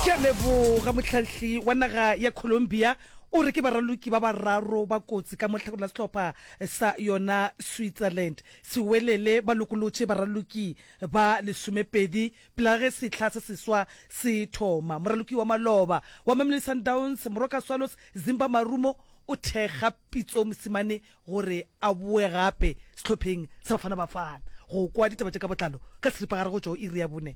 Ke a leboga. Mohlahli wa naga ya Colombia o re ke baraloki ba bararo ba kotsi ka mo hlakoreng la sehlopha sa yona Switzerland se welele. Ba lokolotše baraloki ba lesomepedi pela ge sehla se seswa se thoma. Moraloki wa maloba wa Mamelodi Sundowns, Moroka Swallows, Zimba Marumo o thekga Pitso Mosimane gore a boe gape sehlopheng sa Bafana Bafana. Go kwa ditaba tše ka botlalo ka seripagare go tšwa go iri ya bone.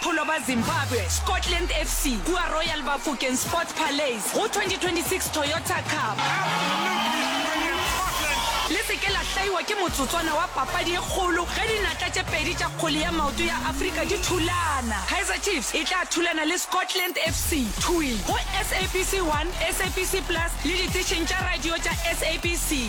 Pholo ba Zimbabwe, Scotland FC, kua Royal Bafokeng Sports Palais go 2026 Toyota Cup. Le se ke la hlaiwa ke motsotswana wa papadi e kgolo ge dinatla tše pedi tša kgole ya maoto ya Afrika di thulana. Kaizer Chiefs e tla thulana le Scotland FC, thwi, go SABC 1, SABC Plus le diteišeng tša radio tša SABC.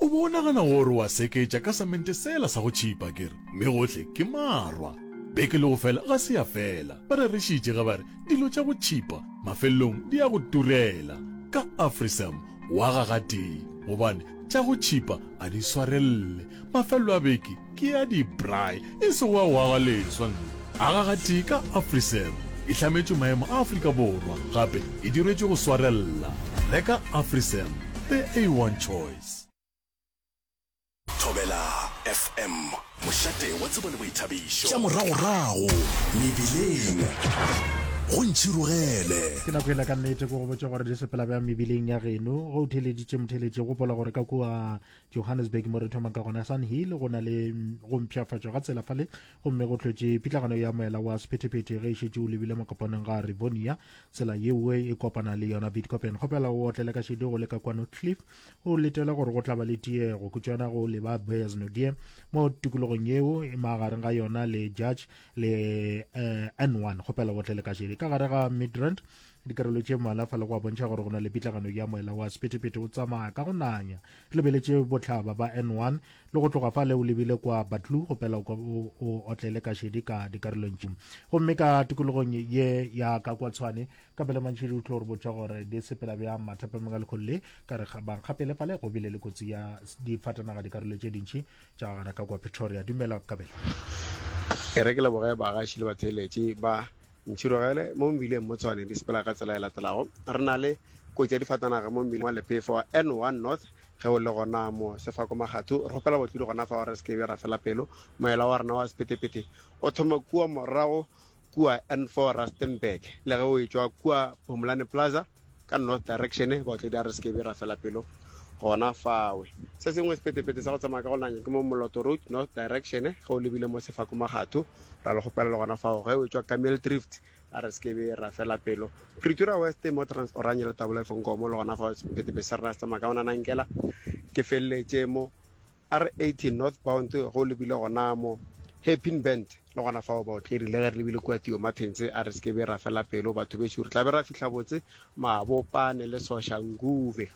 O be o nagana gore o a seketša ka samente sela sa go tšhipa, ke re, mme gohle ke marwa. Beke le go fela ga se ya fela, ba rerišitše ge ba re, Dilo tša go tšhipa mafelelong di ya go turela. Ka Afrisam wa ga gatee, gobane tša go tšhipa a di swarelele. Mafelelo a beke Ke ya di-braai, e se wa go aga leswa nna. Aga gatee ka Afriserve. E hlametšwe maemo a Afrika Borwa, gape e dirwetšwe go swarella. Reka Afriserve, the A1 choice. Thobela FM, mošate wa tsebo le boithabišo. Tša moragorago mebileng go ntšhirogele. Ke nako ela ka nnete ke go botša gore di sepela bjang mebileng ya geno. Ge o theeleditše motheeletši, gopola gore ka kua johannesburg mo re thoma ka gona sun hill go na le mm, go mpšhafatšwa ga tsela fale gomme go tlwetše pitlagano ya moela wa sephetephete ge e šetše o lebile mokopanong ga rivonia tsela yeo e kopana le yona bitcopen kgopela o otlele ka šedi go le ka kwano cliff o letele gore go tlaba le tiego kutšwana go leba boyers nodie mo tikologong yeo e magareng ga yona le judge le eh, n1 kgopela o otlele ka šedi ka gare ga midrand dikarolo tše mmalwa fa le go a bontšha gore go na le pitlagano ya moela wa sephethephethe o tsamaya ka go nanya ke lebeletše botlhaba ba n1 le go tloga fa le o lebile kwa batlu go pela o otlele ka šedi ka dikarolong tše gomme ka tikologong ye ya ka kwa tshwane ka pele mantšhedi o tlo re botša gore di sepela bjang mathapameng a lekgolo le ka re bankgapele fa le go bile le kotsi ya difatanaga dikarolo tše dintšhi tša gana ka kwa pretoria dumela kabelo e re ke leboge bagaši le batheeletše ba Ntšhirogele mo mebileng mo Tshwane di sepela ka tsela e latelago. Re na le kotsi ya difatanaga mo mebileng wa Lephefo wa N1 North ge o le gona mo Sefako Magathu. Re kgopela batlodi gona fa gore re se ke be ra fela pelo. Moela wa rena wa Sepetepete o thoma kua morago kua N4 Rustenburg le ge o e tšwa kua Phumulani Plaza. ka north direction baotledi a re se kebe ra fela pelo gona fawe se sengwe sepetepete sa go tsamaya ka go nanya ke mo moloto road north direction ge o lebile mo sefako magatho ra le gopela le gona fao ge o tswa ka mil drift a re se kebe ra fela pelo pretoria west mo trans oranye le tabola efonkomo le gona fao sepetepete sa rena se tsamaya ka go nanankela ke feleletše mo R80 northbound go lebile gona mo Hairpin Bend, le gona fao baotleri le ge re lebile kua Theo Martins a re se ke be ra fela pelo batho bešo, re tla be ra fihla botse Mabopane le Soshanguve.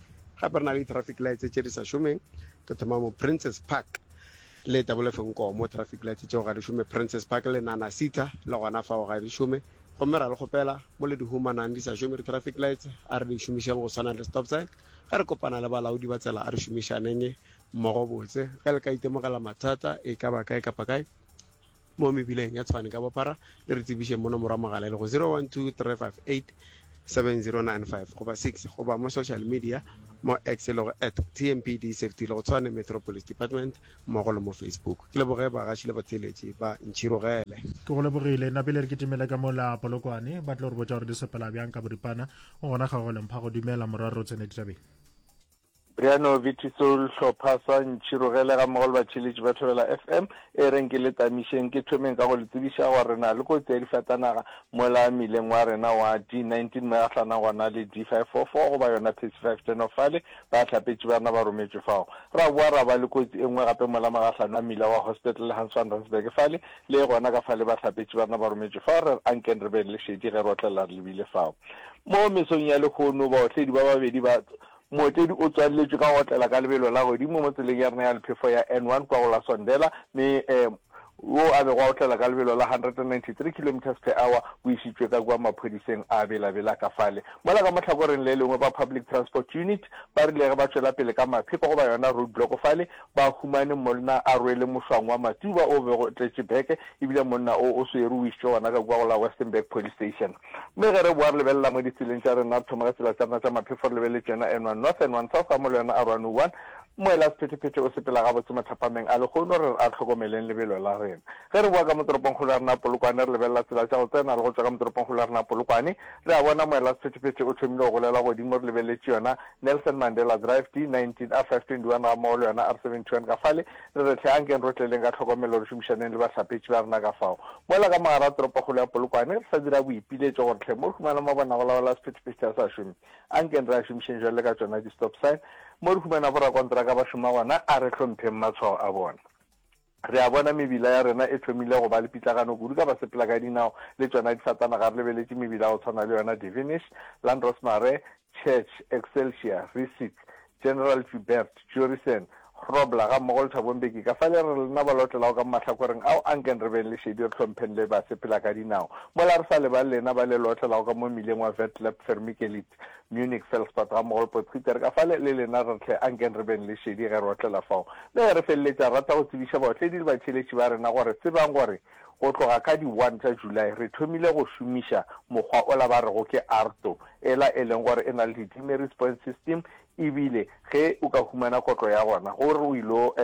Gape re na le di-traffic lights tše di sa šomeng, re thoma mo Princes Park le Double F Nko mo traffic lights tšeo ga di šome, Princes Park le Nana Cita le gona fao ga di šome, gomme ra le kgopela mo le di humanang di sa šome di-traffic lights a re di šomišeng go swana le stop sign, ge re kopana le balaodi ba tsela a re šomišaneng mmogo botse. Ge le ka itemogela mathata e ka ba kae kapa kae mo mebileng ya Tshwane ka bophara, le re tsebišeng mo nomoro ya mogala e lego 0123587095 goba 6 goba mo social media mo X e lego at TMPD Safety le go Tshwane Metro Police Department mmogo le mo Facebook. Ke leboge bagaši le batheeletši ba Ntšhirogele. Ke go lebogile. Napile re kitimele ka mola Polokwane. Ba tlo re botša gore di sepela bjang ka boripana. Go gona kgaogelong phago. Dumela morwa re o tsene ditabeng. Bryano Viti Soul hlopha sa ntšhirogele ga mmogo le batšheletši ba Thobela FM e reng ke le tamišeng ke thomeng ka go le tsebiša gore re na le kotsi ya difatanaga mola mmileng wa rena wa D19 mo ya hlana gona le D544 goba yona Pesi 510 fale ba hlapetši ba rena ba rometšwe fao ra boa ra ba le kotsi e nngwe gape mola magahlano a mmila wa hospital le Hans van Rensberg fale le gona ka fale ba hlapetši ba rena ba rometšwe fao re re ankeng re beng le šedi ge re otlelela re lebile fao mo mesong ya lehono baotledi ba babedi ba Mootledi o tswaleletšwe ka go otlela ka lebelo la godimo mo tseleng ya rena ya lephefo ya N1 kwa go la Sondela mme wo a bego a otlela ka lebelo la 193 kilometres per hour o išitšwe ka kua maphodiseng a Bela-Bela ka fale. Mola ka mo hlakoreng le lengwe ba Public Transport Unit ba rile ge ba tšwela pele ka mapheko goba yona road block fale ba humane monna a rwele mošwang wa matsuba o bego o tletše beke ebile monna o o swere o išitšwe gona ka kua go la Westenburg Police Station. Mme ge re boa re lebelela mo ditseleng tša rena, re thoma ka tsela tša rena tša maphefo, re lebeletse yona N1 North, N1 South gamo le yona R101. Moela Sephetephete o sepela gabotse mathapameng a lehono, re re a re hlokomeleng lebelo la rena. Ge re boa ka mo toropongkgolo ya rena Polokwane, re lebelela tsela tša go tsena le go tšwa ka mo toropongkgolo ya rena Polokwane, re a bona Moela Sephetephete o thomile go golela godimo, re lebeletše yona Nelson Mandela Drive, D19, R521 gammogo le yona R721 ka fale, Re re hle, ankeng rotleleng ka tlhokomelo re šomišaneng le bahlapetši ba rena ka fao. Mola ka mogara toropokgolo ya Polokwane, re sa dira boipiletšo gore hle mo re humana mabonagolaola a sephethephethe a sa šome, ankeng re a šomišeng jwale ka tšona di-stop sign. Mo re humana borakonteraka ba šoma gona, a re hlompheng matshwao a bona. Re a bona mebila ya rena e thomile go ba le pitlagano kudu ka basepelakadinao le tšona difatanaga re lebeletše mebila ya go tshwana le yona Devenish, Landros Mare, Church, Excelsior, Rissick, General Joubert, Jurison, Grobler gammogo le Thabo Mbeki ka fale re lena ba lotlelago ka mo mahlakoreng ao a nkeng re beng le šedi re hlompheng le basepela ka dinao mola re sa lebale lena ba le lotlelago ka mo mmileng wa Vetlab, Vermikelitz, Munich, Felspad gammogo le Potgieter ka fale le lena re tle a nkeng re beng le šedi ge re otlela fao le ge re feleletša rata go tsebiša baotledi le batšheletši ba rena gore tsebang gore Go tloga ka di one tša July re thomile go šomiša mokgwa ola ba rego ke ARTO, ela e leng gore e na le di demerit point system ebile ge o ka humana kotlo ya gona gore o ilo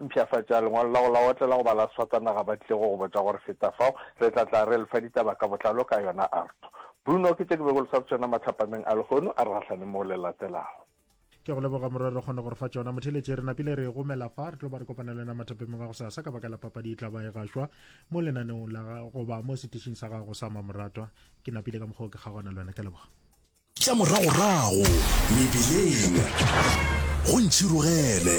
mpshafatša lengwalo la go la otlela goba la sfatanaga ba tlile go go botša gore feta fao re tla tla re lefa ditaba ka botlalo ka yona ARTO. Bruno ke tše ke be ke lo swa tšona matlhapameng a lehono a re gahlaneng mo le latelago. ke go leboga morwa re kgone gore fa tsona motheletše re napile re gomela fa re tlo ba re kopana le wena mathapeng ga go sa sa ka baka la papadi e tla ba e gašwa mo lenaneong la goba mo setišing sa gago sa mamoratwa ke napile ka mokgwa o ke kgaogana le wena ke leboga tša moragorago mebileng go ntšhirogele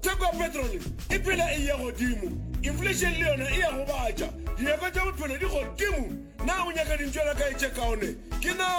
Theko ya petrole e phela e eya godimo, inflation le yona e ya gobatša, dinyakwa tša bophelo di godimo. Na o nyaka dintšwana kae tše kaone? Ke na.